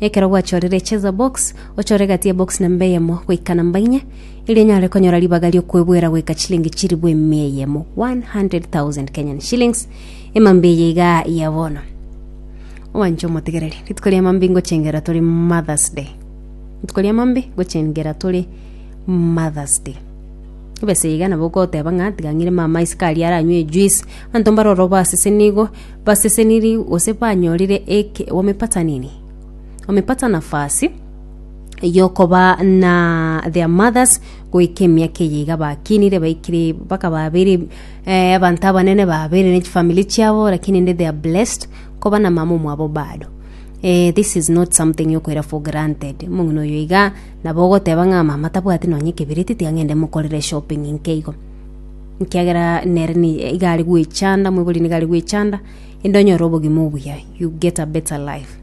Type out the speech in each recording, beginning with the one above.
Ekero gwachorire echesa box, ochore egati ya box namba eyemo goika namba inye, erio onyare konyora ribaga ri'okwebwera goika chilingi chiribu emia eyemo, 100,000 Kenyan shillings, emambia eye iga ya bono. Owanche omotigereri, rituko ria mambi ngochengera tore Mother's Day. Rituko ria mambi ngochengera tore Mother's Day. Ebese iga nabo goteba ng'a tiga ng'ire mama isiko aria aranywe ejuice, abanto mbare orobasese nigo Baseseniri gose banyorire eke omepatanini, omepatanafasi, y'okoba na their mothers goika emiaka eye iga bakinire baikire mpaka babere eh, abanto abanene babere ne chifamili chiabo lakini inde they are blessed koba na mama omwabo bado eh, this is not something yokoira for granted omong'ina oyo iga nabo ogoteba ng'a mama tabwati nonye ekebereti tiga ng'ende mokorere shopping nkeigo Ekiagera nere nigo are gwechanda, omoibori nigo are gwechanda, inde onyore obogima obuya, you get a better life.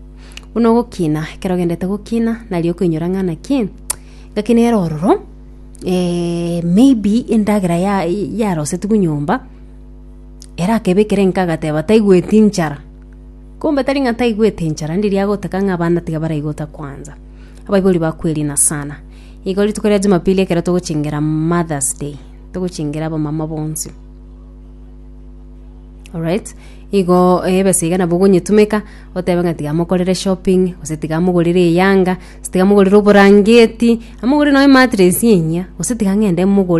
Buna ogokina, ekero ogendete gokina, nari okoinyora ng'a naki, ngakinere ororo, eh, maybe endagera ya- yarosetigwe nyomba, erakebekere nka agateba taigweti nchara, kumbe tari ng'a taigwete nchara, ndiria agotaka ng'a abana tiga baraigota kwanza. Abaibori bakweri na sana. Igo rituko ria jumapili ekero togochengera Mother's Day, togochengera abamama bonsi alright igo ebesa iga nabo ogonyetumeka otebe ng'a tiga mokorere shopping gose tiga mogorere eyanga gose tiga mogorere oborangeti amogorere nonye ematress enyia gose tiga ng'ende mogorere.